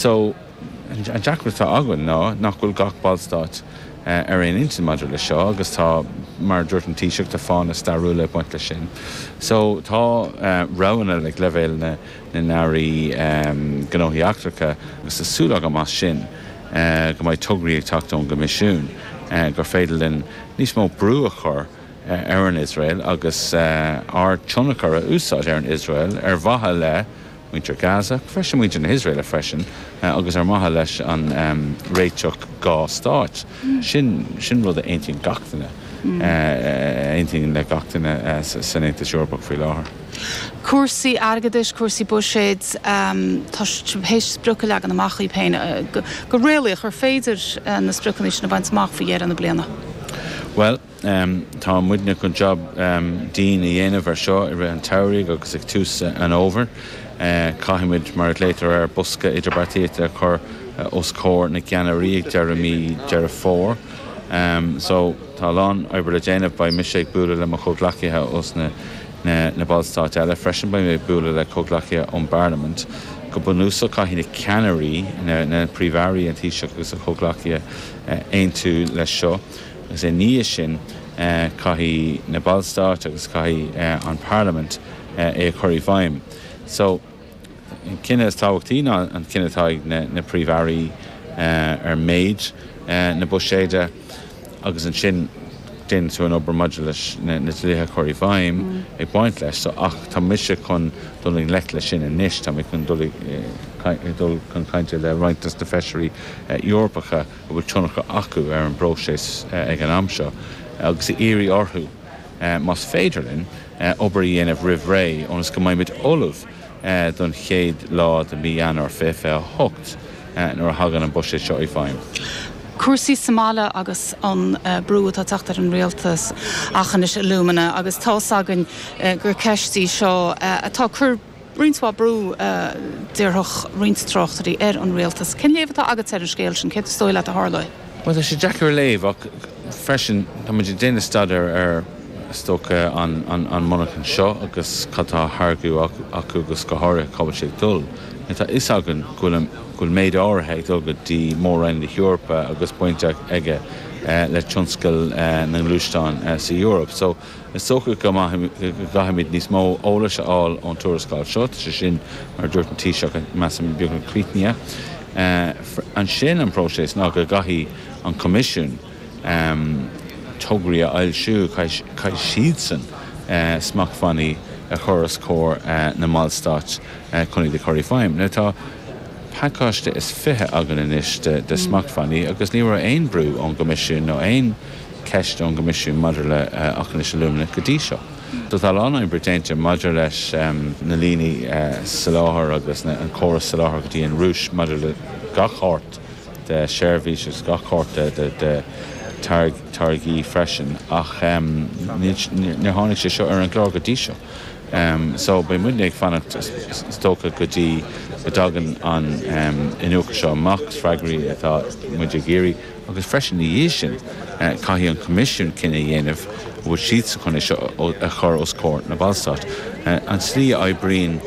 So, an deacracht atá againn ná nach bhfuil gach ballstát ar aon intinn maidir leis seo agus tá, mar a dúirt an Taoiseach, tá fáthanna stairiúla ag baint leis sin. So, tá roghanna ag leibhéal na nAirí Gnóthaí Eachtracha agus tá súil agam as sin go mbeidh tograí ag teacht ón gCoimisiún gur féidir linn níos mó brú a chur ar an Iosrael agus ár tionchar a úsáid ar an Iosrael ar mhaithe le muintir Gaza, ach freisin muintir na hIosraeile freisin, agus ar mhaithe leis an réiteach dhá stáit, sin sin rud a aontaíonn gach duine, a aontaíonn le gach duine san Aontas Eorpach faoi láthair. Cúrsaí airgeadais, cúrsaí buiséid, tá siad tar éis sprioc a leagan amach dóibh féin, go réalaíoch, ar féidir na spriocanna sin a bhaint amach faoi dheireadh na bliana? Bhuel, Tá muidne chun job dian a dhéanamh ar seo i rith an tsamhraidh agus ag tús an fhómhair. Caithfidh muid, mar a nglaotar air, bosca idirbheartaíochta a chur os comhair na gceannairí ag deireadh mí Dheireadh Fómhair. Só, tá a lán oibre le déanamh. Beidh mise ag bualadh le mo chomhghleacaithe ós na ballstáit eile freisin. Beidh mé ag bualadh le comhghleacaithe ón bParlaimint. Go bunúsach, caithfidh na ceannairí, na príomh-airí, an Taoiseach agus a chomhghleacaithe aontú leis seo. Agus ina dhiaidh sin, caithfidh na ballstáit agus caithfidh an Parlaimint é a chur i bhfeidhm. So, an cinneadh is tábhachtaí ná an cinneadh atá ag na Príomh-Airí ar méid na buiséide agus ansin déanann tú an obair maidir leis na dlíthe a chur i bhfeidhm ag baint leis. So, ach tá mise chun dul i ngleic leis sin anois, tá mé chun dul chun cainte le roinnt dos na Feisirí Eorpacha, a bhfuil tionchar acu ar an bpróiseas ag an am seo agus a iarraidh orthu, más féidir linn, obair a dhéanamh roimh ré ionas go mbeimid ullamh don chéad lá de mhí Eanáir 2028 nuair a thagann an buiséad seo i bhfeidhm. Cúrsaí sa mbaile agus an brú atá ag teacht ar an rialtas Aughinish Alumina agus tá's againn gur ceist í seo atá ag cur. roinnt mhaith brú, déarfadh roinnt tráchtairí, ar an rialtas. Cén léamh atá agatsa ar an scéal sin? Céard is dóigh leat a tharlóidh? Bhuel, tá sé deacair a léamh ach freisin tá muid ag déanamh staidéir ar, is dócha, an monarchain seo agus cad atá á tháirgeadh acu agus go háirithe cá bhfuil sé ag dul. Tá a fhios againn go bhfuil méid áirithe ag dul go dtí mór-roinn na hEorpa agus baint aige le tionscal na ngluaisteán sa Eoraip. Is dócha go gcaithfimid níos mó eolais a fháil ón tuarascáil seo, sé sin, mar a dúirt an Taoiseach, measaim, beagnach críochnaithe. Ansin an próiseas ná go gcaithfidh an Coimisiún tograí a fhoilsiú, caithfidh siadsan smachtbhannaí a chur os comhair na mballstáit chun iad a chur i feidhm. Now tá pacáiste is fiche againn anois de smachtbhannaí agus ní raibh aon bhrú ón gCoimisiún nó aon ceist ón gCoimisiún maidir le Aughinish Alumina go dtí seo. Tá a lán oibre déanta maidir leis na líní soláthair agus an córas soláthair go dtí an Rúis maidir le gach shórt de seirbhís agus gach shórt de táirgí freisin ach níor tháinig sé seo ar an gclár go dtí seo só beidh muidne ag fanacht is dócha go dtí go dtagann an iniúchadh seo amach. Is freagraí atá muid ag iarraidh. Agus freisin, ina dhiaidh sin, caithfidh an Coimisiún cinneadh a dhéanamh an bhfuil siad sásta é seo a chur os comhair na Ballstáit. An tslí a oibríonn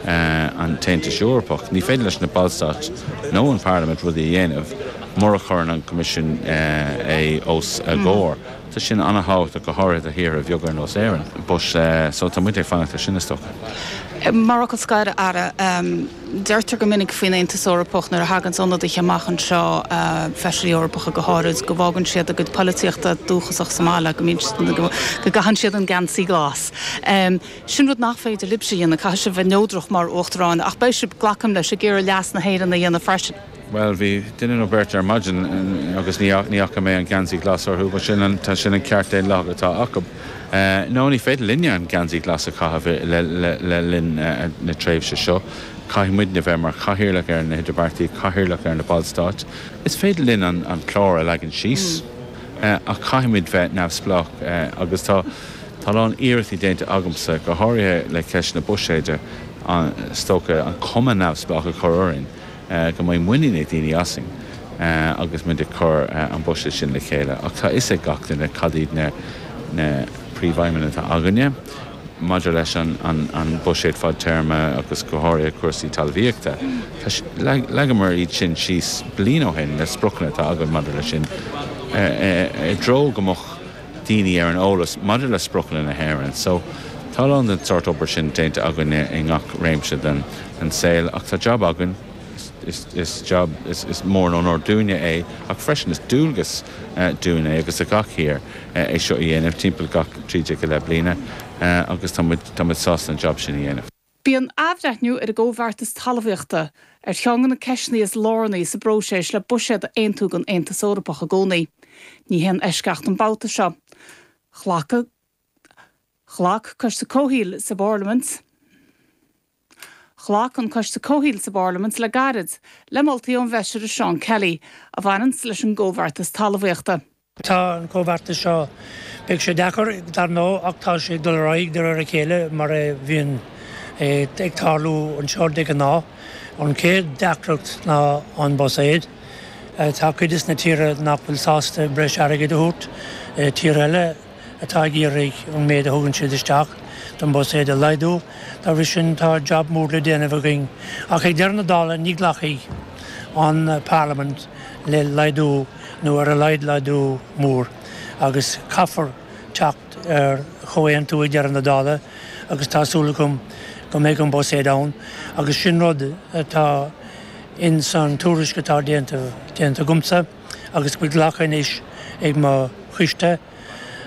an tAontas Eorpach, ní féidir leis na Ballstáit nó an Pharlaimint rudaí a dhéanamh mura chuireann an Coimisiún é os a gcomhair. Tá sin an-tábhachtach, go háirithe do thíortha bheaga ar nós Éirinn. Tá muid ag fanacht ar sin, is dócha. Mar fhocal scoir, a Aire. Deirtear go minic faoin Aontas Eorpach nuair a thaganns ionadaithe amach anseo, Feisirí Eorpacha go háirid, go bhfágann siad a gcuid polaitíochta dúchasach sa mbaile, go mbíonn siad, go gcaitheann siad an geansaí glas. Sin rud nach féidir libhse a dhéanamh, caithfidh sibh bheith neodrach mar Uachtaráin, ach beidh sibh, glacaim leis, ag iarraidh leas na hÉireann a dhéanamh freisin. Bhuel, bhí duine nó beirt ar maidin agus ní fhaca mé an geansaí glas orthu, bhuel sin an, sin an ceart daonlathach atá acu. No, ní féidir linne an geansaí glas a chaitheamh le linn na tréimhse seo, caithfidh muidne bheith mar chathaoirleach ar na hidirbheartaí, cathaoirleach ar na ballstáit, is féidir linn an clár a leagan síos ach caithfidh muid bheith neamhspleách agus tá, tá a lán iarrachtaí déanta agamsa, go háirithe le ceist na buiséide, is dócha, an cuma neamhspleách a chur orainn. go mbeidh muinín ag daoine asainn agus muid ag cur an buiséad sin le chéile. Ach tá a fhios ag gach duine cad iad na príomhaidhmeanna atá againne maidir leis an buiséad fadtéarma agus go háirithe cúrsaí talmhaíochta. Leagamar iad sin síos bliain ó shin, na spriocanna atá againn maidir leis sin, i dtreo go mbeadh. daoine ar an eolas maidir le spriocanna na hÉireann. So, tá a lán den tsórt obair sin déanta againne i ngach réimse den saol ach tá jab againn, is is jab, is is mór an onóir dúinne é ach freisin is dualgas dúinn é agus do gach thír é seo a dhéanamh timpeall gach 13 go leith bliana agus tá muid, tá muid sásta an jab sin a dhéanamh. Bíonn athbhreithniú ar an gComhbheartas Talmhaíochta ar cheann de na ceisteanna is lárnaí sa bpróiseas le buiséad a aontú don Aontas Eorpach i gcónaí. Ní haon eisceacht an babhta seo. Ghlac Ghlac Coiste Comhshaoil sa bParlaimint Ghlac an Coiste Comhshaoil sa bParlaimint le gairid le moltaí ón bhFeisire Seán Kelly a bhaineanns leis an gComhbheartas Talmhaíochta. Tá an comhbheartas seo, beidh sé deacair dar ndóigh ach tá sé ag dul ar aghaidh de réir a chéile mar a bhíonn ag tarlú anseo de ghnáth. An chéad deacracht ná an buiséad. Tá cuid de na tíortha nach bhfuil sásta breis airgid a thabhairt, tíortha eile atá ag iarraidh an méid a thugann siad isteach don bhuiséad a laghdú. Dá bhrí sin tá jab mór le déanamh againn ach ag deireadh na dála ní ghlacfaidh an parlaimint, le laghdú nó ar a laghad laghdú mór agus caithfear teacht ar chomhaontú ag deireadh na dála agus tá súil agam go mbeidh an Buiséad ann agus sin rud atá in san tuairisc atá déanta agamsa agus go bhfuil glactha anois ag mo choiste,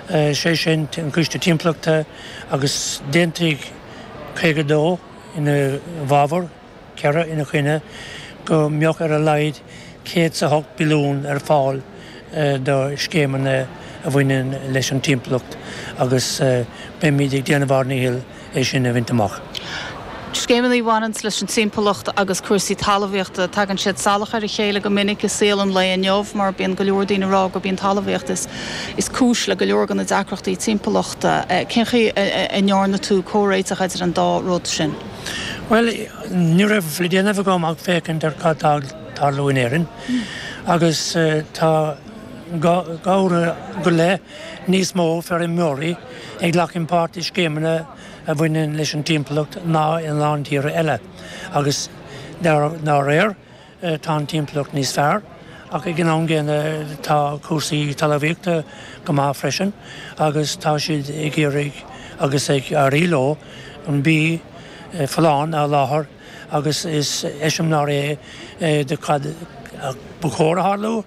sé sin an Coiste Timpeallachta agus d'aontaigh 52 ina fhabhar. 4 ina choinne, go mbeadh ar a laghad 100 is a 8 billiún ar fáil do scéimeanna a bhaineann leis an timpeallacht agus beimid ag déanamh ár ndícheall é sin a bhaint amach. Scéimeanna a bhaineanns leis an timpeallacht agus cúrsaí talamhaíochta, tagann siad salach ar a chéile go minic i saol an lae inniu mar bíonn go leor daoine ag rá gurb í an talamhaíocht is cúis le go leor de na deacrachtaí timpeallachta. Cén chaoi a ndearna tú comhréiteach idir an dá rud sin? Bhuel, ní raibh le déanamh agam ach féachaint ar cad tá ag tarlú in Éirinn agus tá go háirithe i leith níos mó feirmeoirí ag glacadh páirt i scéimeanna a bhaineann leis an timpeallacht ná i lán tíortha eile agus dá réir, Tá an timpeallacht níos fearr ach ag an am gcéanna tá cúrsaí talmhaíochta go maith freisin agus tá siad ag iarraidh agus ag éirí leo an bia folláin a sholáthar agus is eiseamláir é do cad ba chóir a tharlú.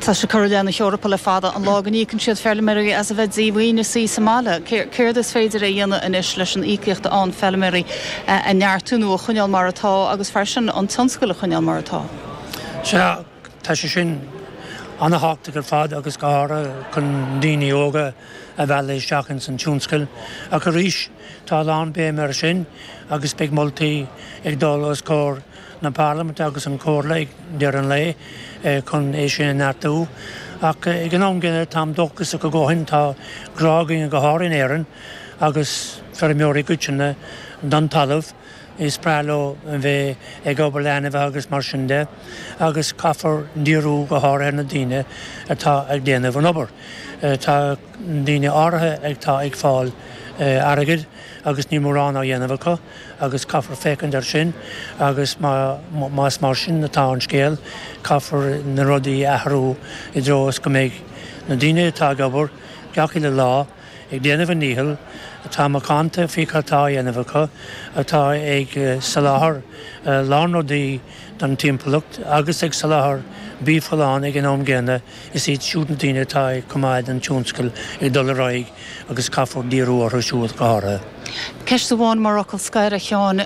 Tá sé curtha i leith na hEorpa le fada an lá go n-íocann siad feilméaraí as a bheith díomhaoin ina suí sa mbaile. Céard is féidir a dhéanamh anois leis an íocaíocht a fhaigheanns feilméaraí a neartú nó a choinneál mar atá agus freisin an tionscal a choinneál mar atá? Sea, tá sé sin ana-thábhachtach ar fad agus go háirithe chun daoine óga a mhealladh isteach ins an tionscal. Ach arís, tá a lán béime ar sin agus beidh moltaí ag dul os comhair na Parlaiminte agus an Chomhairle ag deireadh an lae chun é sin a neartú. Ach ag an am gcéanna, táim dóchasach go gcothaíonn, tá grá againne go háirithe in Éirinn agus feirmeoirí i gcoitinne don talamh, is breá leo bheith ag obair le ainmhithe agus mar sin de, agus caithfear díriú go háirithe ar na daoine atá ag déanamh an obair. Tá daoine áirithe atá ag fáil airgid agus níl mórán á dhéanamh acu. agus caithfear féachaint air sin agus más mar sin atá an scéal caithfear na rudaí a athrú i dtreo is go mbeidh na daoine atá ag obair gach uile lá ag déanamh a ndícheall, atá macánta faoi cad tá á dhéanamh acu, atá ag soláthar a lán rudaí don timpeallacht agus ag soláthar bia folláin ag an am gcéanna. Is iad siúd na daoine atá ag coimeád an tionscail ag dul ar aghaidh agus caithfear díriú orthu siúd go háirithe. Ceist amháin mar fhocal scoir, a Sheáin.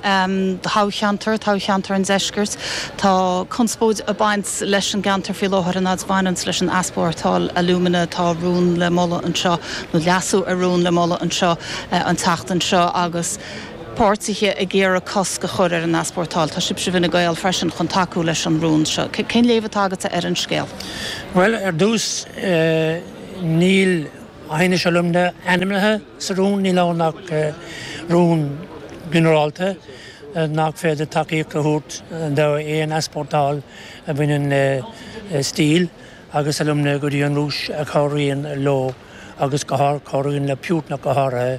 Toghcheantar, toghcheantar an Deiscirt, tá conspóid ag baint leis an gceantar faoi láthair an fhad a bhaineanns leis an easpórtáil alúmana atá rún le moladh anseo, nó leasú ar rún le moladh anseo, an tseachtain seo agus, páirtithe ag iarraidh cosc a chur ar an easpórtáil. Tá sibhse i bhFine Gael freisin chun tacú leis an rún seo. Cén léamh atá agatsa ar an scéal? Bhuel, ar dtús, níl Aughinish Alumina ainmnithe sa rún, níl ann ach rún ginearálta nach féidir tacaíocht a thabhairt d'aon easpórtáil a bhaineann le steel agus alumina go dtí an Rúis a chabhraíonn leo agus gur chabhraíonn le Putin ach go háirithe.